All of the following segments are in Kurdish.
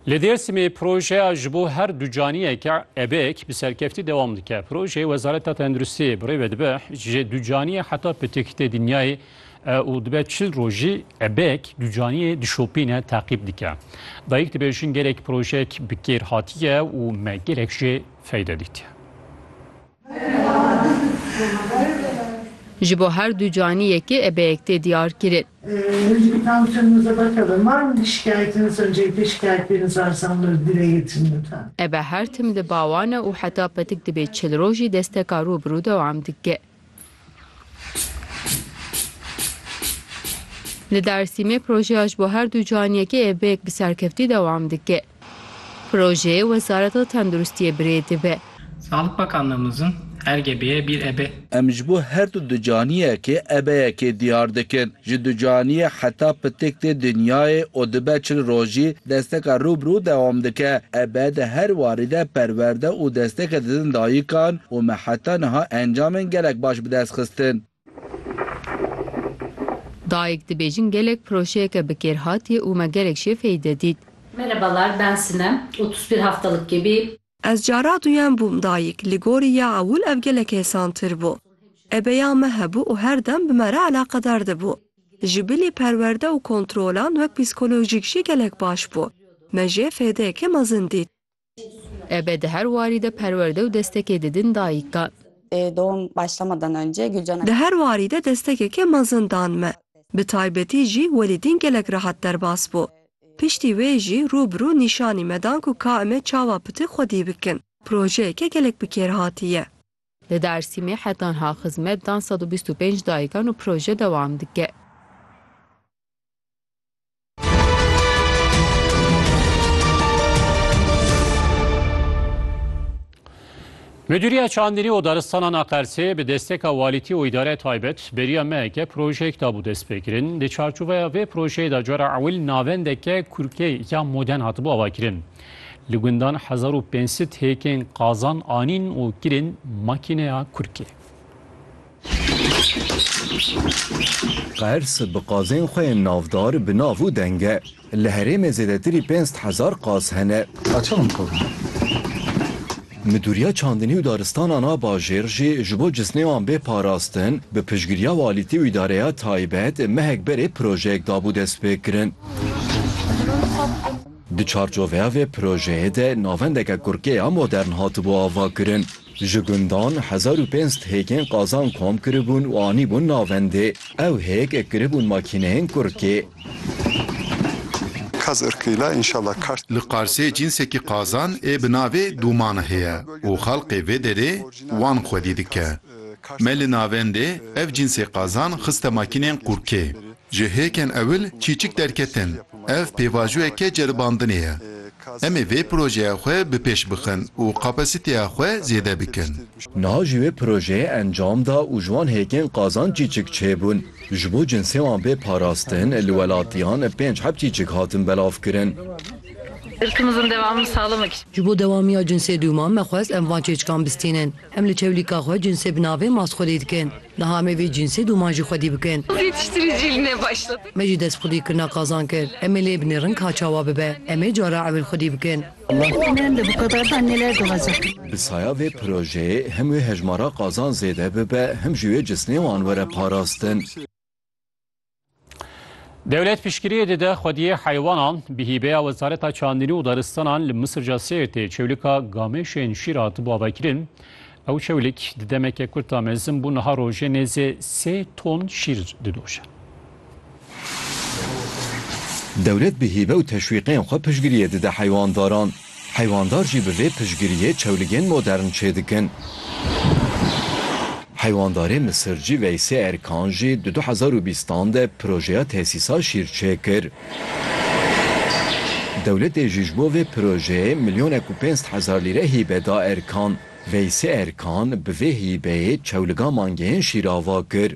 Li Dêrsimê projeya ji bo her du caniyeke ebek bi serkeftî dewam dike. Projeyê Wezareta Tenduristiyê bi rê ve dibe ji du caniyê heta pitik tê dinyayê û dibe çil rojî ebek du caniyê dişopîne teqîb dike. Dayik dibêjin gelek projeyek bi kêr hatiye û me gelek jê feyde dîtiye. Ji bo her du canî yekê ebeyek tê diyar kirin. Ebe her tim li ba wan e û heta petik dibe çil roj jî desteka rû bi rû dewam dike. Li Dêrsîmê projeya ji bo her du canî yekê ebeyek bi serkeftî dewam dike. Projeyê Wezareta Tenduristiyê birê dibe. Sağlık Bakanlığımızın RGB'ye bir ebe. Em ji bo her du ducaniyekê ebeyekê diyar dikin. Ji ducaniyê heta pitik tê dinyayê û dibe çil rojî desteka rû bi rû dewam dike. Ebe di her warî de perwerde û destekê didin dayikan û me heta niha encamên gelek baş bi dest xistin. Dayik dibêjin gelek projeyeke bi kêr hatiye û me gelek jê feyde dît. Merhabalar ben Sinem otuz bir haftalık gebe. Ez cara duyen bûm dayik, li gorî ya ewil ev gelek hêsantir bû. Ebeya me hebû û her dem bi me re eleqedar dibû. Ji bilî perwerde û kontrolan wek psîkolojîk jî gelek baş bû. Me jê fêdeyeke mezin dît. Ebe di her warî de perwerde û destekê didin dayikan. Di her warî de destekeke mezin dan me. Bi taybetî jî Welîdîn gelek rehat derbas bû. Piştî wê jî rû bi rû nîşanî me dan ku ka eme çawa pitik xwe dî bikin. Projeyeke gelek bi kêr hatî ye. Li Dêrsîmê heta niha xizmet dan sed û bîst û pênc dayikan û proje dewam dike. Müdüriye Çandînî û Daristanan a Qersê bi desteka walîtî û îdare taybet beriya me ke projeyek dabû destpêkirin. Di çarçoveya vê projeyê de cara ewil navendeke kurkê ya moden hatibû avakirin. Li gundan hezar û pênc sed hêkên qazan anîn û kirin makîneya kurkê. Qers bi qazên xwe yên navdar bi nav û deng e. Li herêmê zêdetirî pênc hezar qaz hene. Midûriya Çandinî û Daristanan a Bajêr jî ji bo cisnê wan bê parastin, bi piştgiriya walîtî û îdareya taybet mehek berê projeyek dabû destpêkirin. Di çarçoveya vê projeyê de navendeke kurkê ya modern hatibû avakirin. Ji gundan hezar û pênc sed hêkên qazan kom kiribûn û anîbûn navendê. Ew hêk kiribûn makîneyên kurkê. Kaz irkî la înşala kar. Li Qarsê cînsekî qazan ê bi navê Dûman heye û xelkê vê derê wan xwedî dike. Me li navendê ev cînsê qazan xiste makîneyên kurkê. Ji hêkên ewil çîçik derketin, ev pêvajoyeke ceribandinê ye. Em ê vê projeya xwe bi pêş bixin û kapasiteya xwe zêde bikin. Niha jî wê projeyê encam da û ji wan hêkên qazanc çîçik çêbûn. Ji bo cinsê wan bê parastin, li welatiyan pênc heb çîçik hatin belavkirin. Ji bo dewamiya cinsê dûman me xwest em van çêçikan bistînin. Em li çewlîka xwe cinsê bi navê Masxolî dikin. Niha em ê vê cînsê doman jî xwedî bikin. Me jî destxwedî kirina qazan kir. Em ê lê binêrin ka çawa bibe. Em ê cara ewil xwedî bikin. Bi saya vê projeyê, him wê hejmara qazan zêde bibe, him jî wê cisnê wan were parastin. Dewlet piştgiriyê dide xwediyê heywanan bi hîbeya Wezareta Çandinî û Daristanan li Misirca Sêrtê çewlika gamêşên şîr hatibû avekirin. Ew çewlik di demeke kurt de mezin bû niha rojê nêzê sê ton şîr didoşe. Dewlet bi hîbe û teşwîqên xwe piştgiriyê dide heywandaran. Heywanddar jî bi vê piştgiriyê çewligên modern çêdikin. Heywandarê Misircî Veysê Erkan jî di du hezar û bîst an de projeya tesîsa şîr çêkir. Dewletê jî ji bo vê projeyê milyonek û pênc sed hezar lîre hîbe da Erkan. Veysê Erkan bi vê hîbeyê çewliga mangeyên şîr ava kir.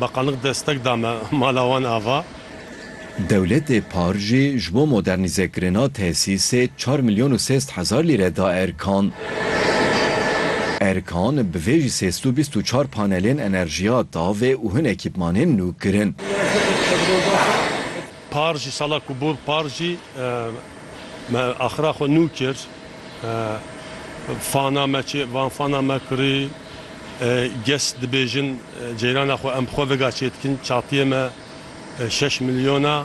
Beqanik destek da me mala wan ava. Dewletê par jî ji bo modernîzekirina tesîsê çar milyon û sêst hezar lîre da Erkan. Erkan bi vê jî sêst û bîst û çar panelên enerjiya tavê û hin ekîpmanên nû kirin. Par jî sala ku bû par jî me axira xwe nû kir. Fana me çê van fana me kirî. Kes dibêjin ceyrana xwe em bi xwe vega çêdikin çatiyê me şeş milyon a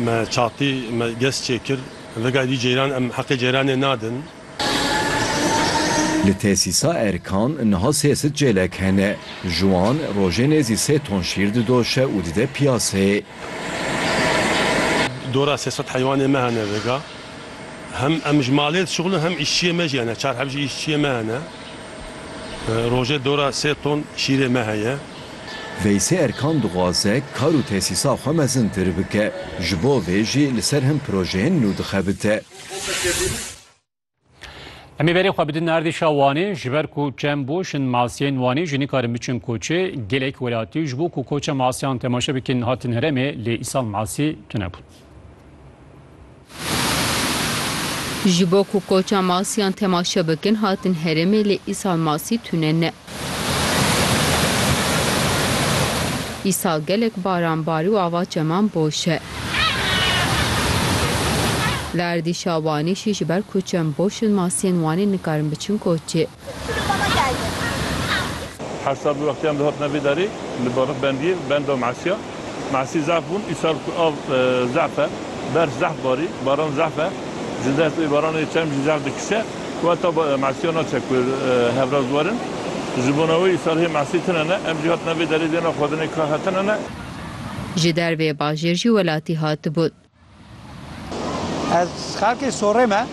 me çatî me kes çêkir vegayê vî ceyran em heqê ceyranê nadin. Li tesîsa Erkan niha sê sit cêlek hene. Ji wan rojê nêzî sê ton şîr didoşe û dide piyaseyê. Dora sê sed heywanê me hene vega. Hem em ji malê dişuxulin hem îşçiyê me jî hene. Çar heb jî îşçiyê me hene. Rojê dora sê ton şîrê me heye. Veysê Erkan dixwaze kar û tesîsa xwe mezintir bike, ji bo vê jî li ser hin projeyên nû dixebite. Em ê berê xwe bidin erdêşa Wanê, ji ber ku çem boş in masiyên Wanê jî nikarin biçin koçê. Gelek welatî ji bo ku koça masiyan temaşe bikin hatin heremê lê îsal masî tune bûn. Ji bo ku koça masiyan temaşe bikin hatin herêmê lê îsal masî tune ne. Îsal gelek baran barî û ava çeman boş e. Li erdî Şabanî jî ji ber ku çem boş in masiyên Wanê nikarin biçin koçê. Her sal bi wexiyan dihatina vê darê li Barix Bendiyê benda Masîya. Masî zehf bûn. Îsal ku av zehf e, berf zehf barî, baran zehf e. Ji dest wê baranê çerm jî zehf dikişe ku heta Masîya naçe ku hevraz werin. Ji bona wê îsal hê Masî tune ne. Em jî hatina vê darê dêna xwedinê ka hetine ne. Ji dervê bajêr jî welatî hatibûn. Ez xelkê Sorê me.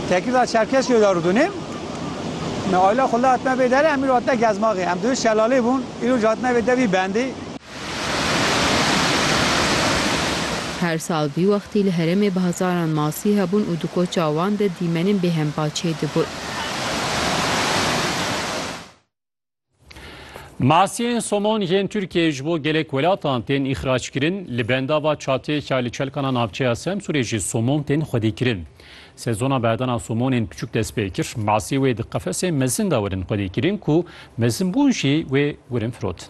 Tekirda Çerkesyo de rûdûnêm. Me ayla xwe li hatime vê derê, em îro hatine Gezmaxê. Em divê şelalê bûn, îro jî hatine vê devî bendê. Her sal vî wextî li herêmê bi hezaran masî hebûn û di koça wan de dîmenên bêhempa çêdibûn. Masiyên somon yên Tirkiyeyê ji bo gelek welatan tên îxrackirin, li benda va çatiyeke li çelkana navçeya Semsûrê jî somon tên xwedîkirin. Sezona berdana somonên piçûk dest pê kir, masî wê di qefesên mezin de werin xwedîkirin ku mezinbûn jî wê werin firotin.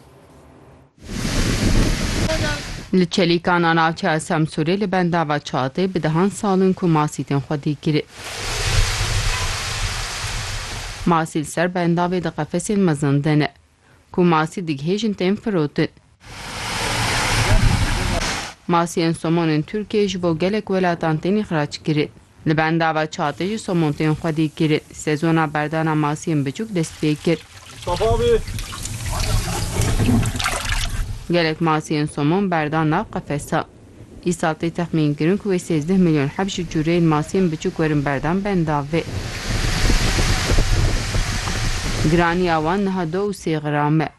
Li Çelîkan a navçeya Semsûrê li bendava Çatê bi dehan salin ku masî tên xwe dî kirin. Masî li ser bendavê di qefesên mezin de ne. Ku masî digihêjin tên firotin. Masiyên somonên Tirkiyeyê ji bo gelek welatan tên îxrac kirin. Li benda ve çatê ji somontên xwe dî kirin. Sezona berdana masiyên biçûk dest pê kir. Gelek masiyên somon berdan nav qefesan. Îsal tê texmîn kirin ku wê sêzdeh milyon heb ji cureyên masiyên biçûk werin berdan benda vê. Giraniya wan niha du û sê gram e.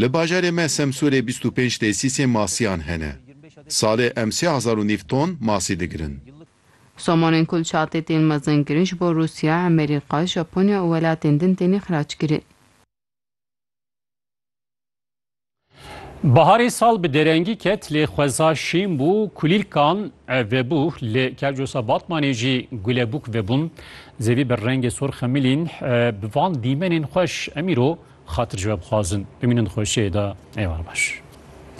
Li bajarê me Semsûrê bîst û pênc tesîsên masiyan hene. Salê em sê hezar û nîv ton masî digirin. Somonên ku li çatê tên mezin kirin ji bo Rûsya, Emerîka, Japonya û welatên din têne xirac kirin. Baharê sal bi derengî ket lê xweza şîn bû, kulîlkan vebû lê kevcosa Batmanê jî gulebûk vebûn. Zêdî bi rengê sor xemilîn bi van dîmenên xweş em îro xatir ji we bixwazin bimînin xweşiyê de êvar baş.